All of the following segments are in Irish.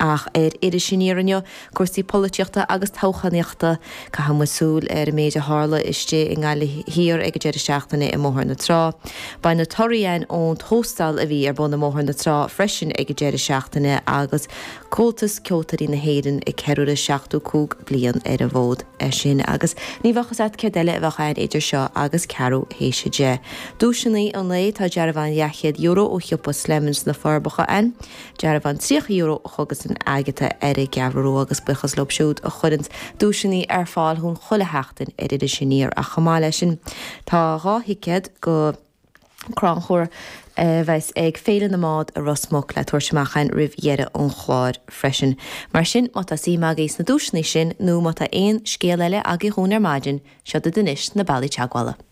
Ach ar iris aniar inniu, cúrsaí polaitíochta agus toghchánaíochta. caithfidh muid súil ar an méid a tharla istigh i nGaillimh Thiar ag an deireadh seachtaine i mBóthar na Trá. Beidh muid ag trácht ar an Tóstal a bhí ar bun i mBóthar na Trá freisin ag an deireadh seachtaine agus Comhaltas Ceoltóirí na hÉireann ag ceiliúradh 75 bliain ar an bhfód. É sin agus ní bheadh fhios a't céard eile a bheadh ann idir seo agus ceathrú théis a deich. Duaiseannaí an lae, tá dearbhán leathchéad euro ó shiopa Slemons sna Forbacha ann. Dearbhán €30 do chógaslann Agatha ar an gCeathrú Rua agus buíochas leo siúd a chuireanns duaiseannaí ar fáil dhúinn chuile sheachtain ar Iris Aniar ach chomh maith le sin tá dhá thicéad go crannchur a bheas ag Féile na mBád i Ros Muc le tabhairt amach a'inn roimh dheireadh an chláir freisin. Mar sin má tá suim agaibh sna duaiseannaí sin nó má tá aon scéal eile agaibh dhúinn ar maidin, seo daoibh anois na bealaí teagmhála.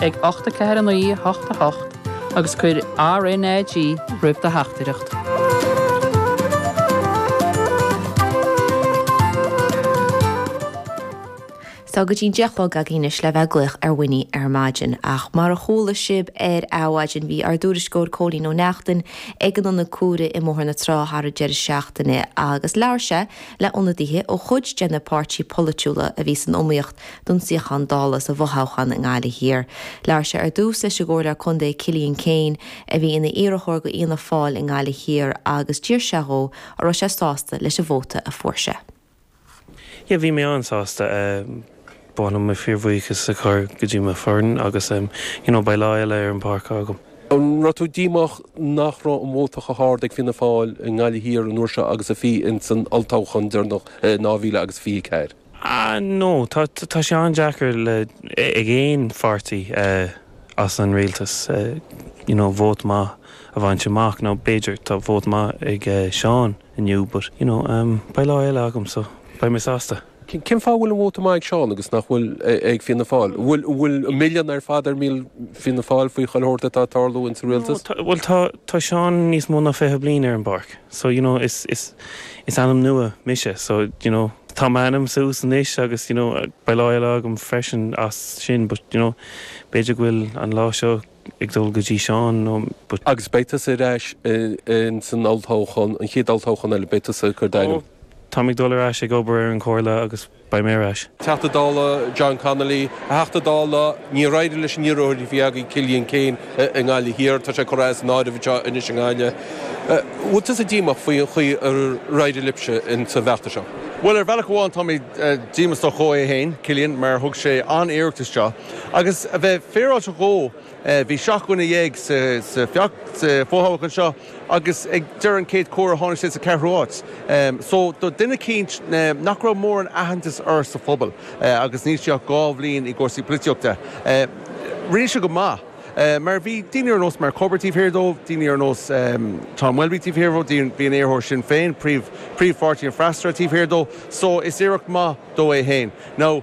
ag 849 88 agus cuir RnaG roimh do theachtaireacht. Tá go dtí an deich a chlog againn anois le bheith ag glaoch ar Mháire ar maidin, ach mar a chuala sibh ar Adhmhaidin bhí ár dtuairisceoir Cóilín Ó Neachtain ag an ionad comhairimh i mBóthar na Trá thar an deireadh seachtaine agus labhair sé le ionadaithe ó chuid de na páirtí polaitiúla a bhí san iomaíocht don suíochán Dála sa bhfothoghchán i nGaillimh Thiar. Labhair sé ar dtús leis an gComhairleoir Contae Cillian Keane, a bhí ina iarrthóir go Fhianna Fáil i nGaillimh Thiar agus d'fhiafraigh sé dhó an raibh sé sásta leis an vóta a fuair sé. Yeah, bhí mé an-sásta. Ba mhaith liom fíor-bhuíochas a chur go dtí mo foireann agus you know beidh lá eile ar an bpáirc agam. An raibh tú díomách nach raibh an vóta chomh hard ag Fianna Fáil i nGaillimh Thiar an uair seo agus a bhí insan olltoghchán deireanach in 2024? Ah no, tá, tá sé an-deacair le, ag aon pháirtí as an rialtas you know vote maith a bhaint amach, now b'fhéidir tá vote maith ag Seán inniu but you know beidh lá eile agam so beidh mé sásta. Cén fáth a bhfuil an vóta maith ag Seán agus nach bhfuil ag Fianna Fáil? An bhfuil, an bhfuil an milleán ar fad ar Fhianna Fáil faoi chuile shórt atá ag tarlú insa rialtas? No, tá, bhuel tá, tá Seán níos mó ná fiche bliain ar an bpáirc so you know is, is, is ainm nua mise so you know. tá m'ainm suas anois agus you know beidh lá eile agam freisin as sin but you know b'fhéidir go bhfuil an lá seo ag dul go dtí Seán no but. Agus beidh tusa ar ais in san olltoghchán, an chéad olltoghchán eile, beidh tusa ag cur d'ainm. Ó, táim ag dul ar ais ag obair ar an Chomhairle agus beidh mé ar ais. Teachta Dála John Connolly, a Theachta Dála, níor éirigh leis an iarrthóir a bhí agaibh, Cillian Keane, i nGaillimh Thiar. Tá sé curtha as an áireamh anseo anois i nGaillimh. Bhfuil tusa díomách faoi an chaoi ar éirigh libhse in sa bhfeachtas seo? Bhuel, ar bhealach amháin tá mé díomách dhó é fhéin, Cillian, mar thug sé an-iarracht isteach. Agus a bheith féaráilte dhó, bhí seacht nduine dhéag sa sa sa bhfothoghchán anseo, agus ag deireadh an chéad chomhairimh tháinig sé sa cheathrú háit. Só, do duine eicínt nach raibh mórán aitheantais air sa phobal, agus níl sé ach dhá bhliain i gcúrsaí polaitíochta, rinne sé go maith. Mar bhí daoine ar nós Mike Cubbard taobh thiar dó, daoine ar nós Tom Welby taobh thiar dhó, bhí an iarrthóir Sinn Féin, príomh-pháirtí an freasúra, taobh thiar dó, só is iarracht maith dó é féin. Now.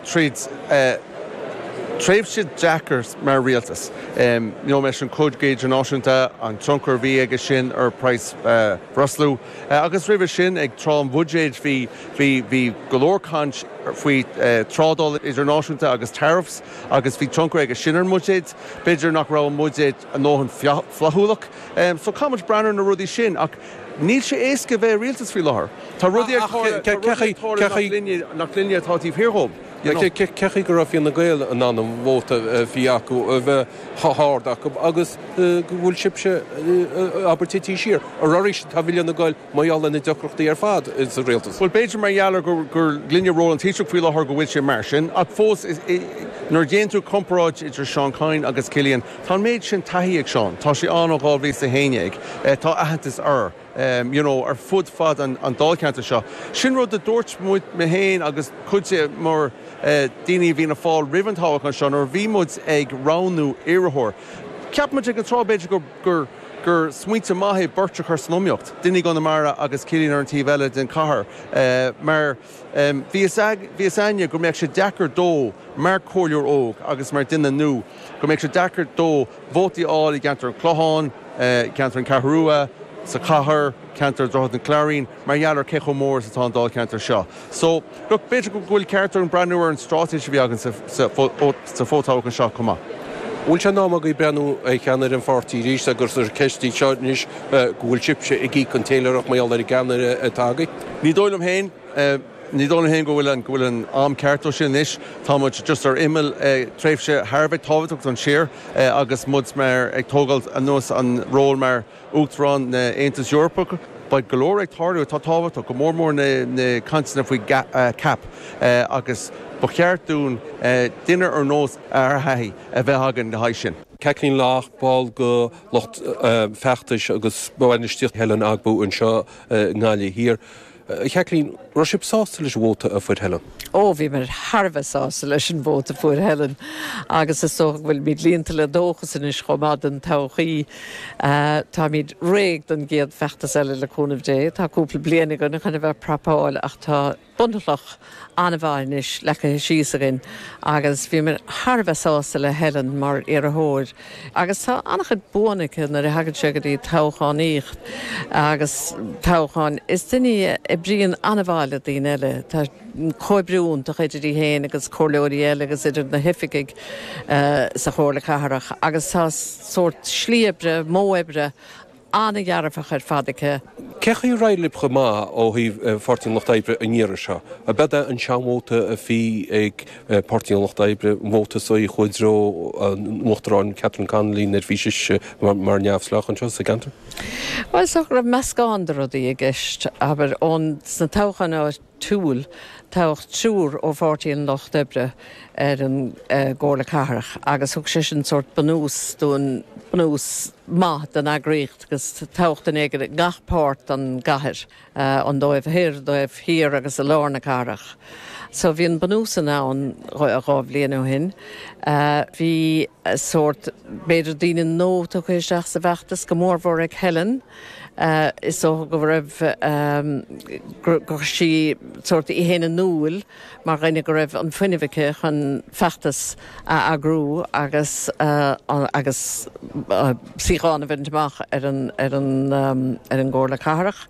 tríd tréimhse deacair mar rialtas. Níor mheas an cogadh idirnáisiúnta an tionchar a bhí aige sin ar phraghas breosla. Agus roimhe sin, ag tráth an bhuiséid, bhí go leor caint faoi trádáil idirnáisiúnta agus tariffs agus bhí tionchar aige sin ar an mbuiséad. B'fhéidir nach raibh an buiséad a ndóthain flaithiúlach. So caithfidh muid breathnú ar na rudaí sin. Níl sé éasca a bheith i rialtas faoi láthair. Tá rudaí ag tarlú, tá rudaí ag tarlú nach linne, nach linne atá taobh thiar dhóibh, you know. Caithfidh go raibh Fine Gael in ann an vóta a bhí acu, a bheith chomh hard acu agus go bhfuil sibhse, abair, tite siar. Arís, tá Fine Gael mar gheall ar na deacrachtaí ar fad sa rialtas. Bhuel, b'fhéidir mar gheall ar gur linne ról an Taoisigh faoi láthair go bhfuil sé mar sin, ach fós, nuair a dhéanann tú comparáid idir Seán Kyne agus Cillian, Tá an méid sin taithí ag Seán, tá sé ann ó 2011, tá aitheantas air you know ar fud fad an dáilcheantair seo. Sin rud a dúirt muid, mé féin agus cuid mhór daoine i bhFianna Fáil roimh an toghachán seo nuair a bhí muid ag roghnú iarrthóir. Cheap muid ag an tráth b'fhéidir gur gur smaointe maith é beirt a chur san iomaíocht, duine i gConamara agus Cillian ar an taobh eile den chathair mar, Bhí a fhios againn go mbeadh sé deacair dó, mar chomhairleoir óg agus mar dhuine nua, go mbeadh sé deacair dó vótaí a fháil i gceantar an Chlocháin, ceantar an Cheathrú Rua, sa chathair, ceantar Dhroichead an Cláirín, mar gheall ar cé chomh mór is atá an dáilcheantar seo. So, look, b'fhéidir go bhfuil ceart orainn breathnú ar an straitéis a bhí againn sa fothoghchán seo chomh maith. An bhfuil sé in am agaibh breathnú ar cheannaire an pháirtí arís agus ar an cheist seo anois go bhfuil sibhse ag íoc an téiléireacht mar gheall ar an gceannaire atá agaibh? Ní dóigh liom féin, ní dóigh liom féin go bhfuil an, go bhfuil an am ceart dó sin anois. Tá muid just ar imeall tréimhse thar a bheith tábhachtach don tír agus muid mar, ag tógáil anuas an ról mar Uachtarán na Aontas Eorpach. Beidh go leor ag tarlú atá tábhachtach, go mór mór na, na cainteanna faoi CAP agus ba cheart dúinn duine ar nós a thaithí a bheith againn le haghaidh sin. Caitlín Loach, ball de lucht feachtais agus bainistíochta Helen Ogbu anseo. nGaillimh Thiar. Chaitlín, raibh sibh sásta leis an vóta a fuair Helen? Ó, bhíomar thar a bheith sásta leis an vóta a fuair Helen agus is dócha go bhfuilimid líonta le dóchas anois chomh maith don todhchaí. Táimid réidh don gcéad feachtas eile le cúnamh Dé. Tá cúpla bliain againn chun a bheith ag prapáil ach tá. bunchloch an-mhaith anois leagtha síos againn agus bhí mé thar a bheith sásta le Helen mar iarrthóir agus tá an-chuid buanna aici nuair a thagann sé go dtí toghchánaíocht agus toghcháin. Is duine í a oibríonn an-mhaith le daoine eile, tá comhoibriú iontach idir í fhéin agus comhairleoirí eile agus idir na hoifigigh sa Chomhairle Cathrach agus tá sórt slí oibre, modh oibre, An-dearfach ar fad aici. Cé chaoi ar éirigh libh chomh maith ó thaobh Pháirtí an Lucht Oibre an iarraidh seo? Ab iad an seanvóta a bhí ag Páirtí an Lucht Oibre an vóta sin a chuaigh i dtreo an Uachtaráin Catherine Connolly nuair a bhí sise mar neamhspleách anseo sa gceantar? Bhuel, is dócha go raibh meascán de rudaí i gceist, abair, ón, sna toghcháin áit, Toghadh triúr ó Pháirtí an Lucht Oibre ar an gComhairle Cathrach agus thug sé sin sórt bunús don, bunús maith don eagraíocht agus toghadh duine éigin i ngach páirt den gcathair, an taobh thoir, an taobh thiar agus i lár na cathrach. So bhí an bunús sin ann dhá bhliain ó shin. Bhí sórt, b'fhéidir daoine nua tugtha isteach sa bhfeachtas, go mórmhór ag Helen. Is dócha go raibh, gur chuir sí sórt, í fhéin in iúl mar dhuine go raibh an fuinneamh aici chun feachtas a eagrú agus agus suíochán a bhaint amach ar an, ar an, ar an gComhairle Cathrach.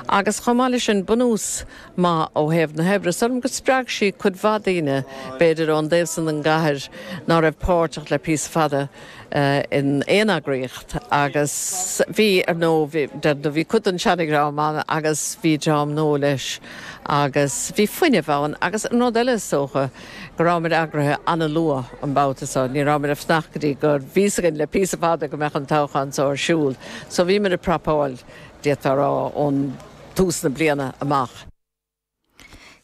Agus chomh maith leis sin, bunús maith ó thaobh na hoibre. Is dóigh liom go spreag sí cuid mhaith daoine, b'fhéidir, ón dtaobh san den gcathair ná raibh páirteach le píosa fada. in aon eagraíocht agus bhí, ar ndóigh, bhí cuid den seanadhream ann agus bhí dream nua leis agus bhí fuinneamh ann agus an rud eile is dócha go raibh muid eagraithe an-luath an babhta seo, ní raibh muid ag fanacht go dtí go, bhí a fhios againn le píosa fada go mbeadh an toghchán seo ar siúl so bhí muid ag prapáil, d'fhéadfá a rá, ón tús na bliana amach.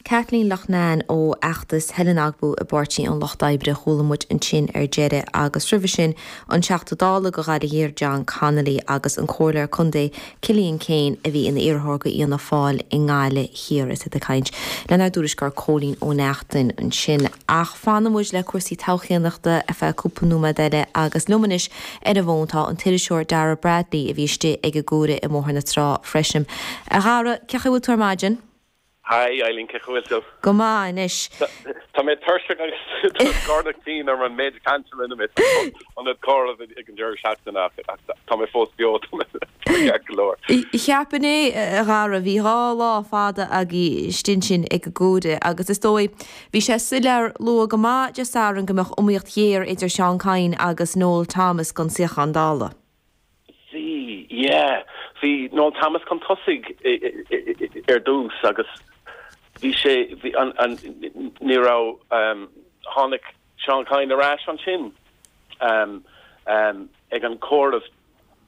Kathleen Loughnane ó fheachtas Helen Ogbu i bPáirtí an Lucht Oibre, chuala muid ansin ar deireadh, agus roimhe sin, an Teachta Dála do Ghaillimh Thiar John Connolly agus an Comhairleoir Contae Cillian Keane a bhí ina iarrthóir do Fhianna Fáil i nGaillimh Thiar. Is iad ag caint lenár dtuairisceoir Cóilín Ó Neachtain ansin. Ach fanfaidh muid le cúrsaí toghchánaíochta ar feadh cúpla nóiméad eile agus liom anois ar an bhfón tá an t-iriseoir Dara Bradley, a bhí istigh ag an gcomhaireamh i mBóthar na Trá freisin. A Dhara, cé chaoi a bhfuil tú ar maidin? Haigh, Eibhlín, cé chaoi a bhfuil tú? Go maith anois. Tá mé tuirseach agus tá scornach tinn orm an méid cainte a rinne mé san ionad comhairimh ag an deireadh seachtaine ach tá mé fós beo, tá mé ceart go leor. Cheapfainn é, a Dhara, bhí dhá lá fada againn istigh ansin ag an gcomhaireamh agus is dóigh, Bhí sé soiléir luath go maith Dé Sathairn go mbeadh iomaíocht ghéar idir Seán Kyne agus Noel Thomas don suíochán Dála. Sea, yeah. Bhí Noel Thomas chun tosaigh ar dtús agus bhí sé, ní raibh, tháinig Seán Kyne ar ais ansin ag an chomhaireamh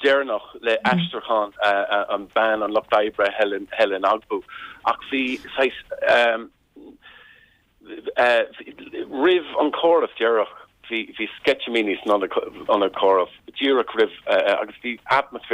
deireanach le aistriúchán an bean an Lucht Oibre, Helen Ogbu, ach bhí saghas, Roimh an gcomhaireamh deireanach bhí sceitimíní san ionad comhairimh díreach roimh agus bhí atmaisféar